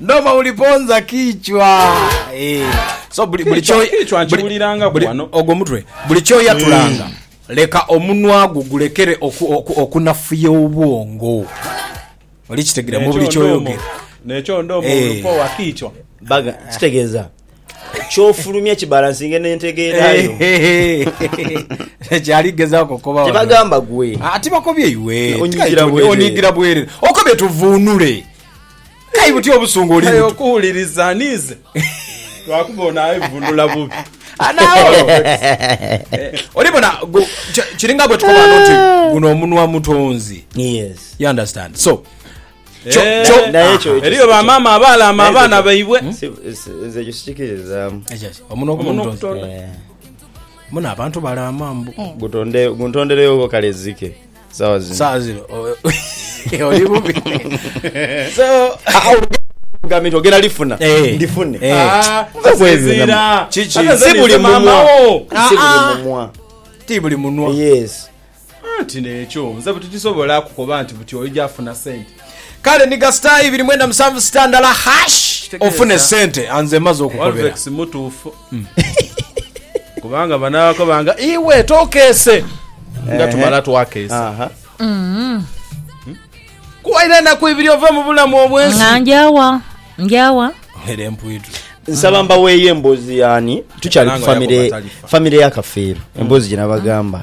Noma uliponza kichwa. Eh. So buli buli kyo kichwa nkiwuliranga ku wano. Ogwo mutwe. Buli kyo yatulanga. Mm. Leka omunwa gwo gulekere okunafuya obwongo. Oli kitegira mu buli kyo yogera. Nekyo ndomo eh. ulipo wa kichwa. Baga kitegeeza. kyofulumya kibalansinge nentegeera yo kyali gezaako kukoba tebagamba gwe ah, ati bakobye iwe onyigira bwerere okobye tuvuunule kai butya obusungu oli buto okuwuliriza nize lwakuba ono aivunula bubi anawo olibona kiringa bwe tukoba nti guno omunwa mutonzi yes you understand so eriyo bamaama abaalaama abaana baibwe nze ekyo sikikiririzaamu omuno ogutondo muna abantu balaama mbu eh. guntondereyo kale zike sawa zino sawa zino oli bubi so gambye nti ogenda lifuna eh. ndifune eh. ah, si buli mumwa si buli mumwa ti buli munwa yes Anti n'ekyo nze buti tisobola kukoba nti buti oija afuna sente. Kale ni ga star ibiri mwenda musanvu star ndala hash ofune sente anze maze okukobera. Olvex mutuufu kubanga bano abakoba nga iwe tokeese nga tumala twakeesa. Kuwaire enaku ibiri ove mu bulamu obwensi. Nga njawa njawa. Era empwitu. Nsaba mbaweeyo emboozi ya ani? Tukyali ku famire famire ya Kafeero. Emboozi gye nabagamba.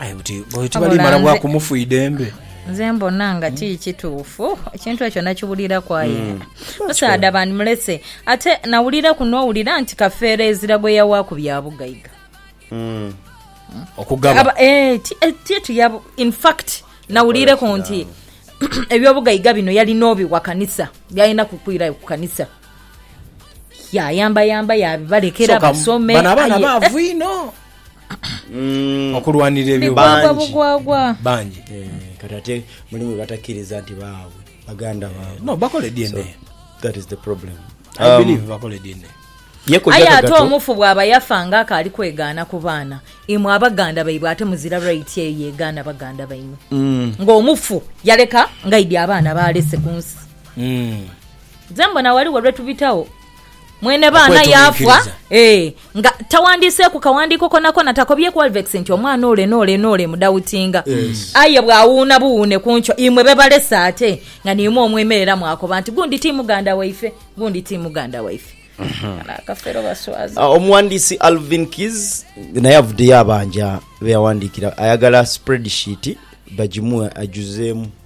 Aye buti oyo tibali mala bwa kumufu idembe. Nze mbona nga ti kituufu ekintu ekyo nakiwuliraku aye mm. musaadha bandimulese ate nawuliraku nowulira nti kafeero ezira gwe yawaaku bya bugaiga mm. okugaba eh, eh, titu yabo infact nawulireku nti ebyobugaiga bino yalina obiwa kanisa byalina kukwirayo ku kanisa yayambayamba yabibalekera basome bano abaana baavu inho mm. okulwanira ebyo bigwagwa bugwagwa bangi eh, kati ate mulimu batakiriza nti baabwe baganda baabwe no bakole DNA so, that is the problem I um, believe bakole DNA aye ate omufu bwaba yafa nga akaali kwegaana ku baana imwe abaganda baibwe ate muzira right eyo yegaana baganda baimwe mm. ngaomufu yaleka ngaidi abaana balese ku nsi mm. ze mbona waliwo lwetubitawo Mwene baana yaafwa Okwetuminkiriza. ee, nga taghandiiseeku kaghandiiko konakona, takobyeku Alvex nti omwana ole n'ole n'ole mudawutinga. Aye bw'awuuna buwuune ku nkyo, imwe be balese ate nga niimwe omwemerera mwakoba nti, Gundi ti muganda waife, gundi ti muganda waife. Kano akafere obaswaza. Ah, Omughandiisi Alvin Keys naye avuddeyo abanja be yawandiikira ayagala spreadsheet bagimuwe ajuzeemu.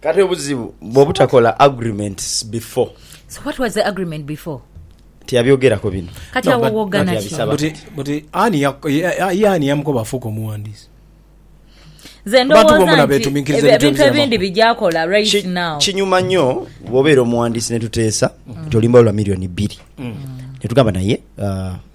Kati obuzibu bwobutakola agreements before. So what was the agreement before? Tiyabyogerako bino. Kati awo wogana ki? Buti buti ani ya ye ani yamukoba afuuke omuwandiisi? Nze ndowooza nti ebintu ebindi bijakola right now. Kinyuma nnyo bwobeera omuwandiisi netuteesa nti olimba lwa million bbiri netugamba naye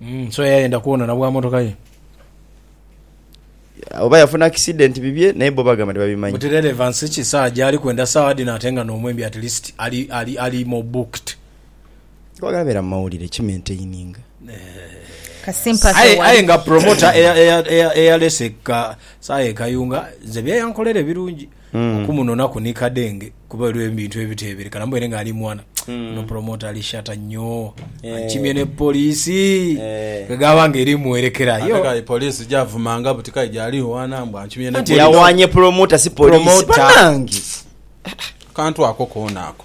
Mm, so yayenda kwonona bwa motoka ye. Oba yafuna accident bibye naye bo bagamba tibabimanyi. But relevance ki sawa gyali kwenda sawa dhino ate nga n'omwembi at least ali ali ali more booked. Kwagala beera mu mawulire ki maintaininga. Ka sympathy Aye aye wali. nga promoter eya eya eya eyalese ka sawa e Kayunga nze byeyankolere birungi. okumunonaku ni kadenge kuba waliwo ebintu ebitebereka namubere nga ali mwana no promoter ali shata nyoo ankimye ne police kwegaba nga eri muwerekera Ate yo kale police gyavumanga buti kale gyali wana mbu ankimye ne Anti police. yawanye promoter si police Promoter. banange Akantu ako koona ako.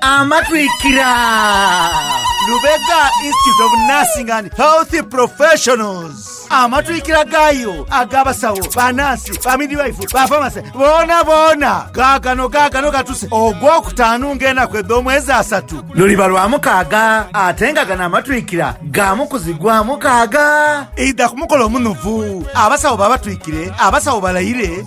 Amatwikira, Lubega Institute of Nursing and Health Professionals. Amatwikira gaayo ag'abasawo, banaasi, bamidwife, bafamase boona boona gaagano gaagano gatuse Ogwokutaanu ng'enaku edh'omwezi asatu luliba Lwamukaaga ate nga gano amatwikira ga mu kuzigwa mukaaga. Idha ku mukolo omunuvu. Abasawo babatwikire, abasawo balayire.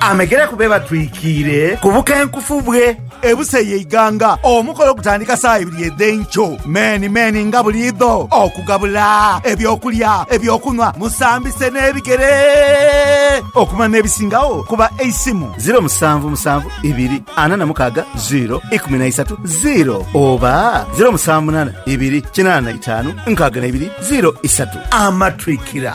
Amegere ku be batwikiire ku bukenkufu bwe. Ebusa ye Iganga. Omukolo gutandika saa ibiri edh'enkyo meeni meeni nga buliidho okugabula eby'okulya, eby'okunhwa, musambise n'ebigere okumala n'ebisingagho ku ba Eisimu. Ziro musanvu musanvu ibiri ana na mukaaga ziro ikumi na isatu ziro oba ziro musanvu munaana ibiri kinaana na itaanu nkaaga na ibiri ziro isatu. Amatwikira.